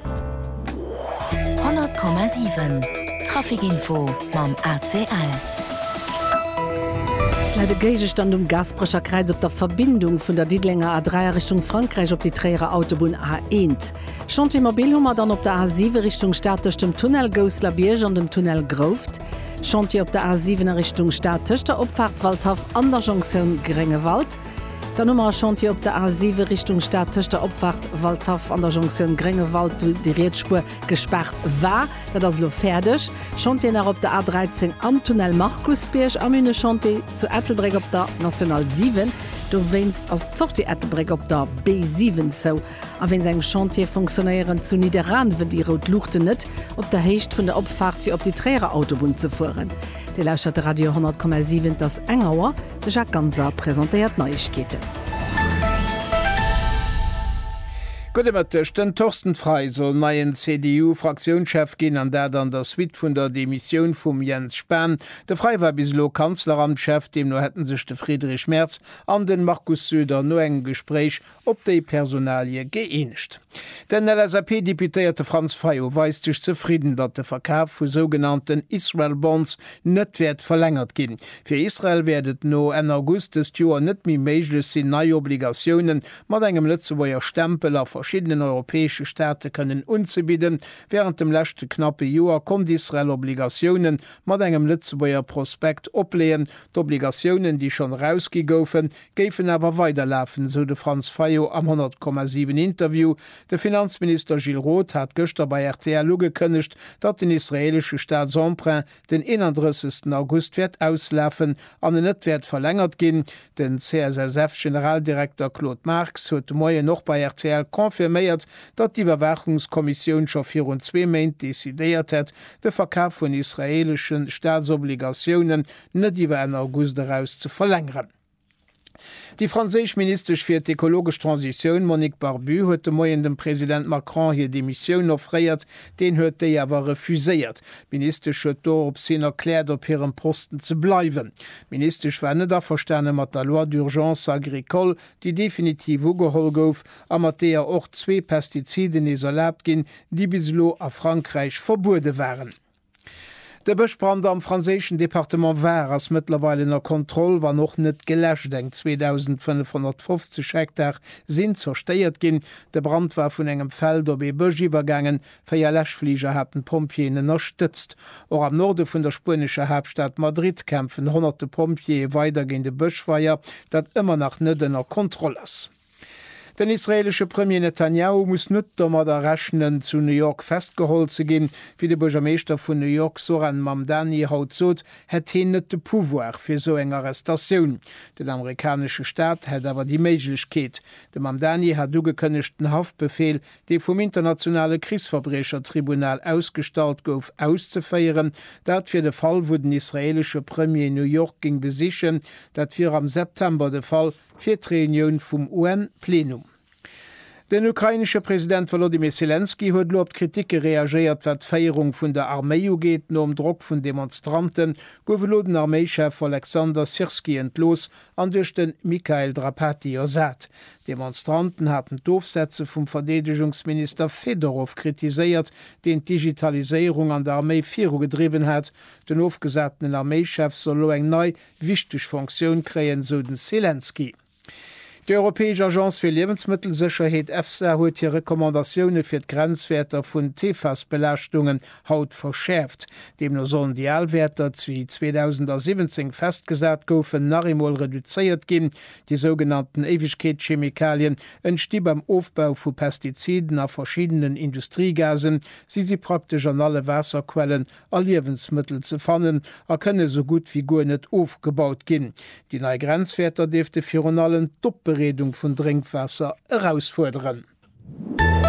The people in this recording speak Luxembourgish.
100,7 Traficinfo mam ACL. Läit e Géigestand um Gaasperecher Kräiz op der Verbindung vun der Diddelenger A3 a Richtung Frankräich op déi Tréierer Autobunn A1? Chantier mobil hu mer dann op der A7 Richtung Stad tëscht dem Tunnel Gousselerbiërg an dem Tunnel Grouft. Chantier op der A7 a Richtung Stad tëscht der Opfaart Waldhaff an der Jonktioun Gréngewald. Dann hu mer e Chantier op der A7 Richtung Stad tëscht der Opfahrt Waldhaff an der Jonktioun Gréngewald, wou déi riets Spuer gespaart war. Dat ass elo fäerdeg. Chantier nach op der A13 am Tunnel Markusbierg a mir hunn e Chantier zu Ettelbréck op der National 7. Dowéinst ass d'Sortie Ettelbréck op der B7 zou. A wéinst engem Chantier funktionéieren zu Nidderaanwen déi rout Luuchten net op der Héicht vun der Opfahrt fir op déi Tréierer Autobunn ze fueren. Dir lauschtert de Radio 100,7. Et ass eng Auer. De Jacques Ganser presentéiert d'Neiegkeeten. Gudde Mëtteg, Den Thorsten Frei soll neien CDU-Fraktiounschef ginn, an dat an der Suite vun der Demissioun vum Jens Spahn. De Frei war bis elo Kanzleramtschef, deemno hätte sech de Friedrich Merz an den Markus Söder no engem Gespréich op déi Personalie gëeenegt. Den LSAP-Deputéierte Franz Fayot weist sech zefridden, datt de Verkaf vu sougenannten Israel Bonds net wäert verlängert ginn. Fir Israel wäert et no Enn August dëst Joer net méi méiglech sinn, nei Obligatiounen mat engem Lëtzebuerger Stempel a verschiddenen europäesche Staate kënnen unzebidden. Wärend dem leschte knappe Joer konnt Israel Obligatiounen mat engem Lëtzebuerger Prospekt opleeën. D'Obligatiounen, déi schonn erausgi goufen, géifen awer weiderlafen, esou de Franz Fayot am 100, 7 Interview. De Finanzminister Gilles Roth hat gëschter bei rtl ugekënnegt, datt den israeelesche Staatsemprunt den 31 August wäert auslafen an en net wäert verlängert ginn. Den CSSF-Generaldirekter Claude Marx huet de Moien och bei rtl confirméiert, datt d'Iwwerwaachungskommissioun scho virun zwee Méint decidéiert hätt, de Verkaf vun israeeleschen Staatsobligatiounen net iwwer Enn August eraus ze verlängeren. Déi franséisch Ministesch fir d'ekologesch Transitioun Monique Barbu huet de Moien dem President Macron hir Demissioun offréiert, deen huet déi awer refuséiert. D'Ministesch huet dorops hin erkläert, op hirem Posten ze bleiwen. D'Ministesch war net averstane mat der Loi d'urgence agricole, déi definitiv ugeholl gouf a mat deeër och zwee Pestiziden nees erlaabt ginn, déi bis elo a Frankräich verbuede waren. De Bëschbrand am franséischen Departement Var ass mëttlerweil ënner Kontroll, wann och net geläscht. Eng 2.550 Hektar sinn zerstéiert ginn. De Brand war vun engem Feld op ee Bësch iwwergaangen. Véier Läschfliger haten d'Pompjeeën ënnerstëtzt. Och am Norde vun der spuenescher Haaptstad Madrid kämpfen honnerte Pompjeeë weider géint e Bëschfeier, dat ëmmer nach net ënner Kontroll ass. Den israeelesche Premier Netanjahu muss net domadder rechnen, zu New York festgeholl ze ginn. Wéi de Buergermeeschter vun New York Zohran Mamdani haut sot, hätt heen net de Pouvoir fir esou eng Arrestatioun. Den amerikanesche Staat hätt awer déi Méiglechkeet. De Mamdani hat ugekënnegt, den Haftbefeel, dee vum Internationale Krichsverbriechertribunal ausgestallt gouf, auszeféieren. Dat wier de Fall, wou den israeelesche Premier New York géing besichen. Dat wier am September de Fall. fir d'Reunioun vum UN-Plenum. Den ukrainesche President Wolodymyr Selenskyj huet elo op d'Kritike reagéiert, wat d'Féierung vun der Arméi ugeet. Nom Drock vun Demonstrante gouf elo den Arméichef Oleksandr Syrskyi entlooss an duerch de Mikhail Drapatyi ersat. D'Demonstranten haten d'Ofsetze vum Verdeedegungsminister Fedorov kritiséiert, deen d'Digitaliséierung an der Arméi virugedriwwen hat. Den ofgesatenen Arméichef soll elo eng nei wichteg Fonctioun kréien, sou den Selenskyj. Déi europäesch Agence fir Liewensmëttelsécherheet, EFSA, huet hir Recommandatioune fir d'Grenzwäerter vun d'PFAS-Belaaschtungen haut verschäerft. Deemno sollen déi al Wäerter, déi 2017 festgesat goufen, nach eemol reduzéiert ginn. Déi sougenannten Éiwegkeetschemikalien entsti beim Ofbau vu Pestiziden a verschiddenen Industriegasen. Si si praktesch an alle Waasserquellen, a Liewensmëttel ze fannen a kënne sou gutt wéi guer net ofgebaut ginn. Déi nei Grenzwäerter dierfte virun allem d'Opbereedung vun Drénkwaasser erausfuerderen.